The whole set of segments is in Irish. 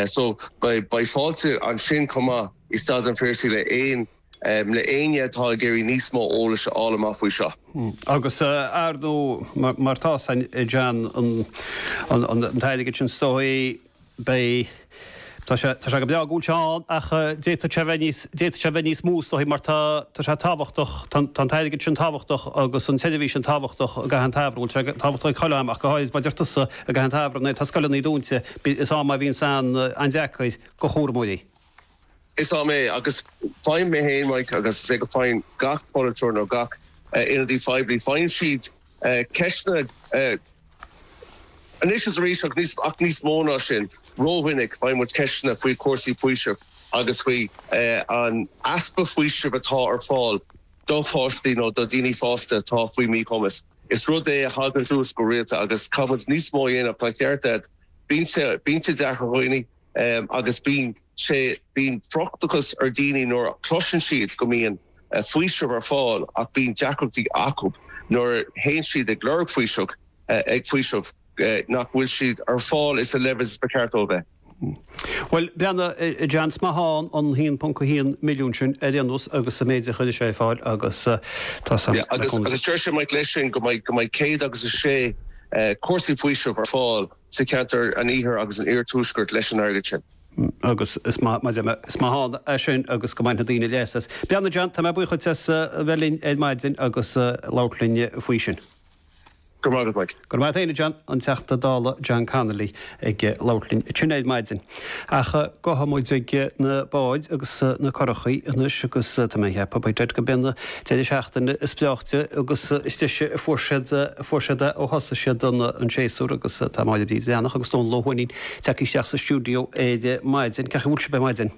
So, beidh fáilte ansin chomh maith i Staid an Phiarsaigh le éinne atá ag iarraidh níos mó eolais a fháil amach faoi seo. Agus ar ndóigh, mar tá sin a John an t-airgead sin is dóichí beidh, tá sé go breá go bhfuil sé ann ach d'fhéadfadh sé bheith níos, d'fhéadfadh sé bheith níos mó is dóichí mar tá sé tábhachtach, tá an t-airgead sin tábhachtach agus an tseirbhís sin tábhachtach i gcaitheamh an tsamhraidh, bhuel tá sé tábhachtach ag chuile am ach go háirid mar a deir tusa, I gcaitheamh an tsamhraidh nuair atá scoileanna dúinte is am é a bhíonn sé an-deacair do chúramóirí. Is am é agus faigheann mé féin Mike agus is dóigh go faigheann gach polaiteoir nó gach ionadaí phoiblí. Faigheann siad ceisteanna anois is arís ach níos mó ná sin rómhinic faigheann muid ceisteanna faoi chúrsaí faoisimh agus faoi an easpa faoisimh atá ar fáil. do pháistí nó do dhaoine fásta atá faoi mhíchumas. Is rud é a thagann suas go rialta agus caithfimid níos mó a dhéanamh, tá an ceart agat. Bíonn sé, bíonn sé deacair ar dhaoine agus bíonn sé, bíonn frustrachas ar dhaoine nuair a chloiseann siad go mbíonn faoiseamh ar fáil ach bíonn deacrachtaí acu nuair a théann siad ag lorg faoiseamh, ag faoiseamh. nach bhfuil siad ar fáil sa leibhéal is ba cheart dóibh bheith. Bhuel, breathnaigh, a John, is maith ann an 1.1 milliún sin ar aon nós agus sa méid a chuireann sé ar fáil agus tá sam Yeah, agus, agus dúirt sé Mike leis sin go mbeidh, go mbeidh céad agus a sé cúrsaí faoisimh ar fáil sa cheantar an iarthair agus an iarthuaiscirt leis an airgead sin. agus is maith, mar sin, is maith ann é sin agus go mbainfidh daoine leas as. Breathnaigh John, tá mé buíoch duit as a bheith linn ar maidin agus labhairt linn faoi sin. Go raibh maith agat, Mike. Go raibh maith agat féin a John. An Teachta Dála John Connolly ag labhairt linn ansin ar maidin. Ach gabhfaidh muid ag na báid agus na curachaí anois agus tá mé ag ceapadh, by dad, gurb é an deireadh seachtaine is breáichte agus is deise a fuair siad a fuair siad é ó thosaigh siad an an séasúr agus tá Máire Bríd Bhreathnach agus Dónall Ó hUaithnín tagtha isteach sa stiúideo ar maidin. Cén chaoi a bhfuil sibh ar maidin?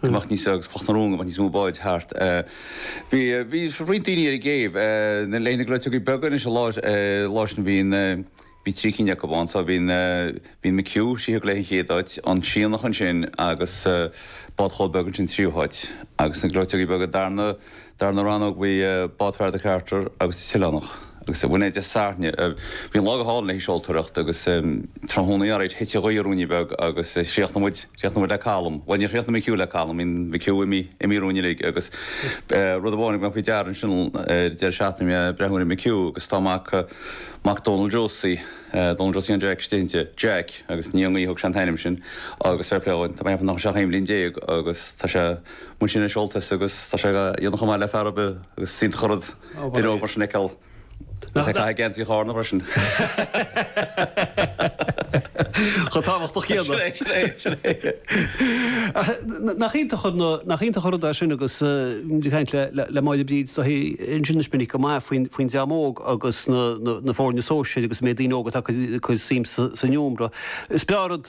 go mbeadh níos agus Cloch na Rón go mbeadh níos mó báid thart. Bhí bhí roinnt daoine ar an gcéibh. Leis na gleoiteogaí beaga anois an lá sin bhí na bhí trí cinn acu ann so bhí na bhí an McHugh sí a thug léi an chéad áit an Sionnach ansin agus bád Chóil Beag ansin tríú háit agus na gleoiteogaí beaga darna Darna rannóg bhí Bád Fear de Charter agus an tOileánach agus bhain é de Sarnia. Bhí an lá go hálainn le haghaidh seoltóireacht agus tráthnóna ann thit an ghaoth ruainne beag agus chríochnaigh muid, chríochnaigh muid le calm, bhuel níor chríochnaigh McHugh le calm, bíonn McHugh imithe, imithe romhainn uilig agus rud amháin a thug mé faoi deara ansin ar deireadh seachtaine bhí mé ag breathnú ar McHugh agus tá mac, mac Donal Josie, Donal Josie an Jack istigh inti, Jack agus ní ón ngaoth a thug sé an t-ainm sin agus fair play dhó, tá mé ag ceapadh nach bhfuil sé ach aon bhliain déag agus tá sé, Mhúin sé anois Ultais agus tá sé ag déanamh chomh maith le fear ar bith agus is iontach an rud duine óg mar sin a fheiceáil agus ag caitheamh geansaí Charna freisin. Chomh tábhachtach céanna. Sin é, sin é, sin é. Nach iontach an, nach iontach an rud é sin agus muid ag caint le Máire Bríd anseo anois minic go maith faoin, faoin dream óg agus na, na foirne sóisir agus an méid daoine óga atá ag cur suim sa, san iomramh. Is breá an rud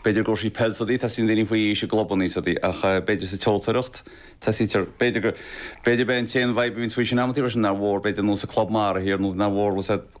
B'fhéidir i gcúrsaí peile is rudaí, tosaíonn daoine faoi aois i gclubanna is rudaí ach b'fhéidir sa tseoltóireacht, tosaítear, b'fhéidir go, b'fhéidir b'é an t-aon vibe a bhíonns faoi sin amantaí freisin, nár mhór b'fhéidir nó sa club mara thiar nó nár mhór bhfuil a fhios agat